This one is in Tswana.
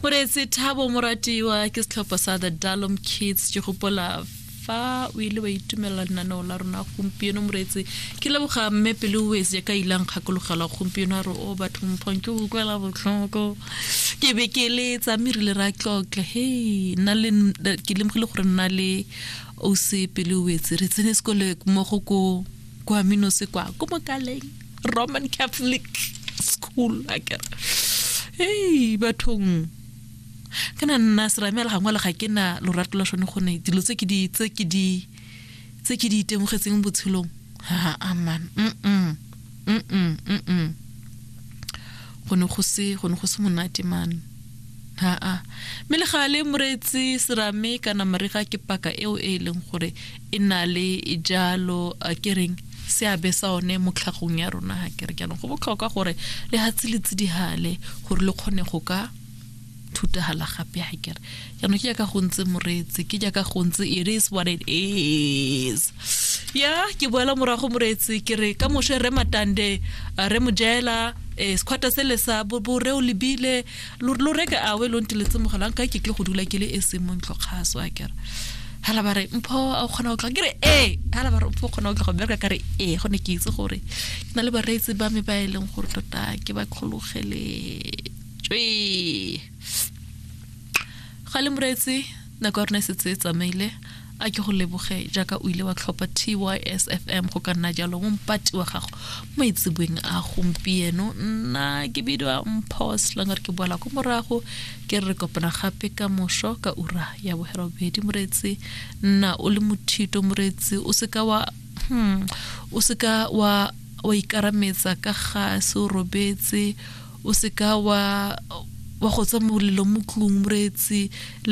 moreetsi thabo moratiwa ke setlhopha sa the dalom kids ke gopola fa o ile wa itumelela lenaneo la rona gompieno moreetsi ke leboga mme pele o etse ya ka ilang kgakologela gompieno a re o batho mphong ke utlwela botlhoko ke be ke letsa mme rile ra tlotla hei nna le ke lemogile gore nna le o se pele o etse re tsene sekole mmogo ko kwa minose kwa ko mokaleng roman catholic school a kere hey bathong ke na nna seramela gangwe le ga ke na lorato la sone gone dilo tse ke di tse ke di tse ke di itemogetseng botshelong ha aman mm mm mm mm mm go ne go se go ne go se monate man haa mme le gale moreetsi serame kana marega ke paka eo e e leng gore e na le jalo a ke reng seabe sa one mo tlhagong ya rona ga kere jaanong go botlhokwa gore le hatse le tsidihale gore le kgone go ka thutagala gape ha kere jaanong ke jaaka go ntse moreetsi ke jaaka go ntse it is what it is ya ke boela morago moreetsi ke re ka moshe re matande re mojela eh, sekhwata se le sa bore o lebile lo reke awe lo ntiletse mogalang ka ke tle go dula ke le e seng mo ntlhokgaso a kere hala ba re mpho a kgona go tla ke re ee hala ba re mpho kgona go tla go bereka ka re ee go ne ke itse gore ke na le bareetsi ba me ba e leng gore tota ke ba kgologeleng tswee ga le moretse nako ya rona e setse e tsamaile a ke go leboge jaaka o ile wa tlhopha tysfm go ka nna jalo mo mpati wa gago mo itsebeng a gompieno nna ke bidiwa mpho selang gore ke boela ko morago ke re kopana gape ka moso ka ura ya bogerobedi moretsi nna o le mothito moretsi o seka wa hmm, o seka wa wa ikarametsa ka ga se o robetse o seka wa wa go tswa molelo mo tlung moreetsi